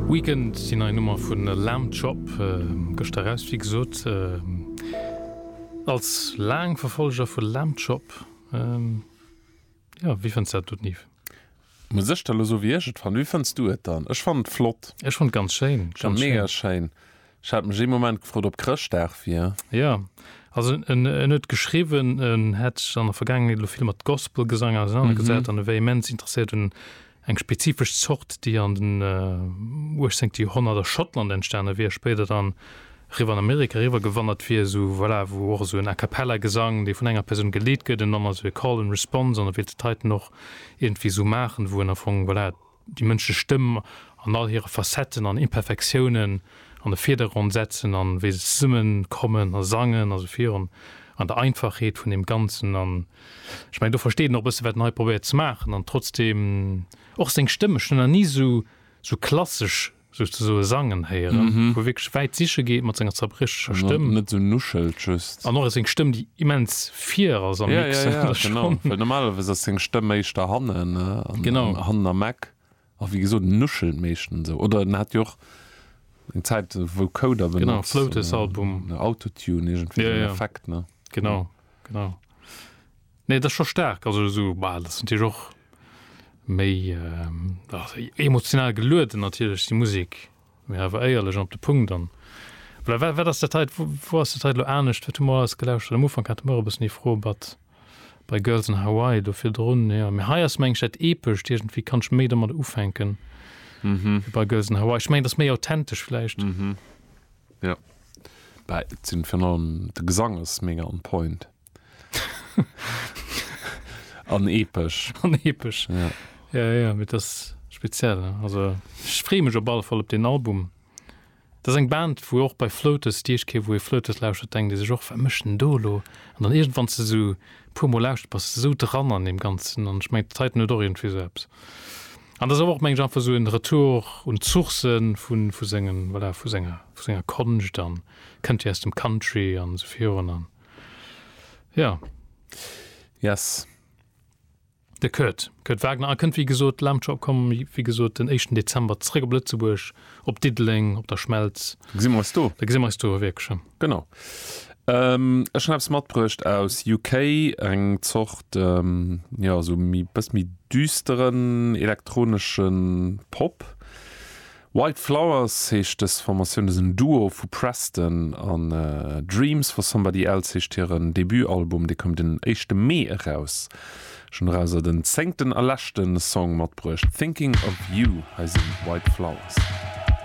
Weekend, déi nei Nummer vu Lamb Chop, gëschter eraus wéi gesot. Als laang Verfolleger vu Lamb Chop, jo wéi fënns dat do Nive? Muss ech der lo soen wéi ech et fannen? Wéi fënns du et dann? Ech fannen et flott. Ech fannen et ganz schéin. Mega schéin. Ech hat mech ee Moment gefrot op Chrëschtdag wier. Jo, also en huet geschriwwen, en hätt sech an der Vergaangenheet elo vill mat Gospelgesang ausenanergesat an e wär immens interesséiert un eng spezifesch Zort, déi an den uechtzéngte Joerhonnert a Schottland entstane wier, spéider dann eriwwer an Amerika eriwwergewandert wier, esou voilà, wou och esou en a cappella Gesang, dee vun enger Persoun geleet gëtt, en dann also e Call and Response an e wéilt et heiten och iergendwéi esou maachen, wou en am Fong voilà. déi mënschlech Stëmm an all hire Facetten an Imperfektiounen an de Virdergrond setzen an wéi se zesummen kommen a sangen a sou virun an der Einfachheet vun deem Ganzen an ech mengen do versteet en och e bësse wat en hei probéiert ze maachen an trotzdem och seng Stëmm, ech hunn en nach ni sou sou klassesch. sech ze soe sangen héieren, wou e wierklech wäit siche geet mat senger zerbriecheger Stëmm. Net esou nuschelt just. An och seng Stëmm, déi immens fier ass am Mix. Jo, jo, genau. Well normalerweis ass seng Stëmm éischter hannen, hannen am Eck. A wéi gesot, en nuschelt meeschtens esou. Oder en hat jo och eng Zäit Vocoder benotzt. Genau, Floatus-Album. Autotune, iergendwéi esou en Effekt, ne? Genau. Genau. Nee, dat scho stark also so bah, das sind Dir och méi ähm, emotional gelueden natierlech die Musik mé awer éierlech op de Punkt an wat ass der Teit wo ass der Teit lo anecht wat humor ass gelauscht am Ufang hat mer bis nie froh bat bei Girls in Hawaii do fir run ja mir hei ass mengg dat epesch Dirgent wie kannch méi domat ufänken mhm. bei Girls in Hawaii ich meng das méi authentisch fleischicht. Mhm. Jo bah et sinn virun allem de Gesang ass mega on point an epesch. An epesch ja ja ja mee et ass speziell also ech free mech op alle Fall op deen Album. Et ass eng Band wou och bei Floaters déi éischt Kéier wou ee Floaters lauschtert denkt ee sech och wat mécht en do elo an dann iergendwanns de sou puer mol lauschtert bass de sou dran an deem ganzen an ech mengen d'Titan huet och iergendwéi sou eppes. An dass awer och mengen ech einfach esou en Retour un d'Sourcen vun vu sengen voilà vu senger vu senger Konscht an kënnt jo aus dem Country an esou virun an jo. Yes. De Kurt, Kurt Wagner, a kënnt wéi gesot, Launcher opkomm wéi gesot den éischten Dezember zréck op Lëtzebuerg. op Diddeleng, op der Schmelz. Da gesi mer eis do. Da gesi mer eis do, wierklech, jo. Genau. Ech hunn eppes matbruecht aus UK, eng Zort, jo, esou méi, bëss méi düsteren elektronesche Pop. White Flowers heescht dës Formatioun, dat ass en Duo vu Preston an Dreams For Somebody Else heescht hiren Debutalbum, dee koum den éischte Mee eraus. Schon erauser den zéngten a leschten Song matbruecht, Thinking of You, hei sinn d'White Flowers.